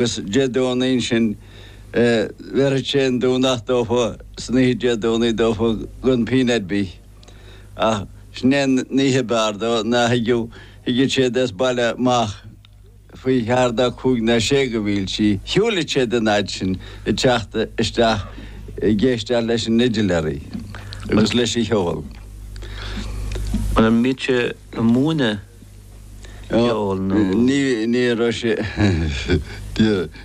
gus Dé Domhnaigh ansin bhéarfadh sé an Domhnach dófa san oíche Dé Domhnaigh dófa gan pínn ar bith. Ach sin é an oíche ab fhearr dó ná thigeadh, thigeadh siad as baile amach faoi cheathair ná cúig ná sé de mhílte, shiúileadh siad an fhaid sin ag teacht isteach ag éisteacht leis an fhidiléirí agus leis an cheol. An mbíodh sé a' múineadh? ceoil nó. Ní raibh sé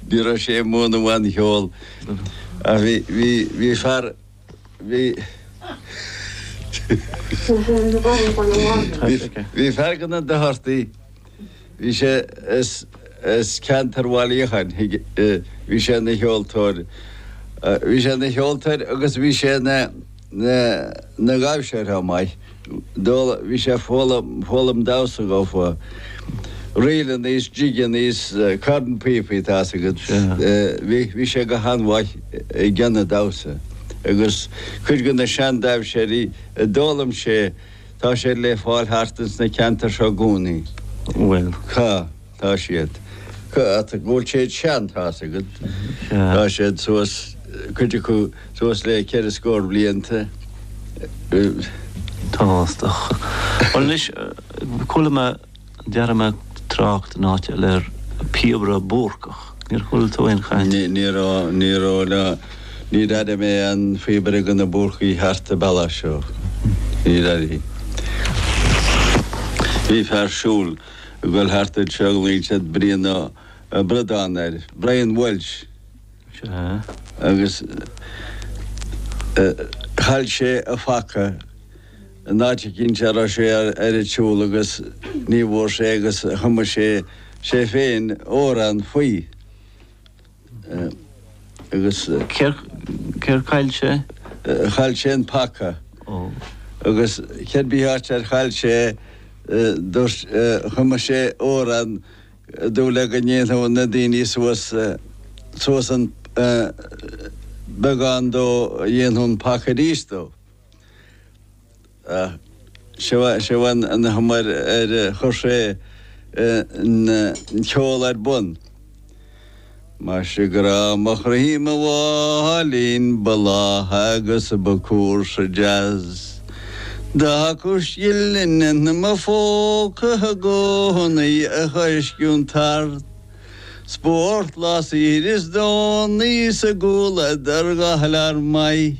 ní raibh sé ag múineadh aon cheol ach bhí bhí fear bhí bhí fear de na Dochartaigh bhí sé as as ceantar Bhaile Uí Fhiacháin bhí sé ina cheoltóir bhí sé ina cheoltóir agus bhí sé ina na na dhamhsóir chomh maith bhí sé ag foghlaim foghlaim damhsa dófa ríleannaí is jigeannaí is cornphíopaí tá's agat bhí bhí sé go han-mhaith i gceann an damhsa agus cuid de na seandamhsóirí a d'fhoghlaim sé tá siad le fáil thart ins na ceantair seo i gcónaí bhuel cá Tá siad. Ach go bhfuil siad sean, tá's agat. Tá siad suas, cuid acu, suas le ceithre scór blianta. Tá's agat. Bhuel anois, chuala mé, d'airigh mé trácht in áit eile ar phíobaire Búrcach. Níor chuala tú aon chaint? Ní, ní raibh, ní raibh ná, níor airigh mé aon phíobaire de na Búrcaigh thart an bealach seo. Níor airigh. Bhí fear siúl. a ghoil thart anseo, ghlaonn siad Brian Ó Bradáin air, Brian Welch, agus chaill sé a phaca in áit eicínt a raibh sé ar an tsiúl agus ní bhfuair sé agus chum sé sé féin amhrán faoi. Agus céard chaill sé? Chaill sé an paca. Ó. Agus cér bith áit ar chaill sé é, dúirt, chum sé amhrán ag dúil le go ndéanfadh na daoine suas, suas an, beagán dó, dhéanfadh an paca arís dó. Seo an chuma ar chuir sé an ceol ar bun. Maise grá mo chroí mo mháilín ba lágha agus ba cúrsa deas D'fhágadh scilling in mo phócaibh i gcónaí a choisceadh an tart Spórt lá saoire is Domhnaí sa gcúl eadar dhá lear maith.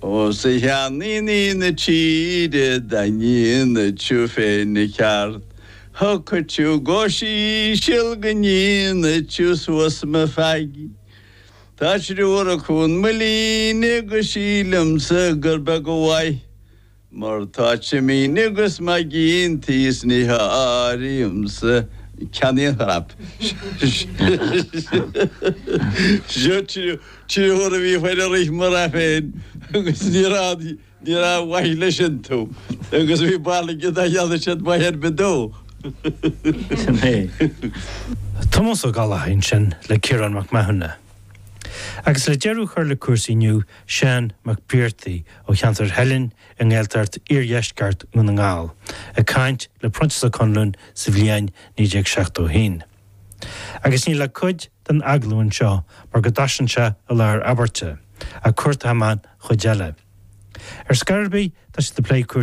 Os a cheannínní na tíre dá ndéanfadh tú féin an ceart, Thiocfadh tú go híseal go ndéanfadh tú suas mo feaig, Tá triúr acub 'un mo líne agus sílimse gur beag an mhaith. Mar tá cimíní agus maigín tí is ní háirímse ceann aon chrap. Seo triúr a bhí fear ag rith mo rath féin agus ní rabh ní rabh mhaith leis iontu agus bhí barúil aige nach ndéanfadh siad maith ar bith dó. Sin é. Tomás Ó Gallchobhair ansin le Ciarán Mac Mathúna. Agus le deireadh a chur le cúrsaí inniu, Seán Mac Briartaigh ó cheantar Theilinn i nGaeltacht Iardheisceart Dhún na nGall, ag caint le Proinsias Ó Conluain sa bhliain 1971. Agus níl ach cuid den agallamh anseo mar go dtosaíonn sé i lár abairte, ach cuartóidh mé an chuid eile. Ar scor ar bith, tá siad ag plé cúrsaí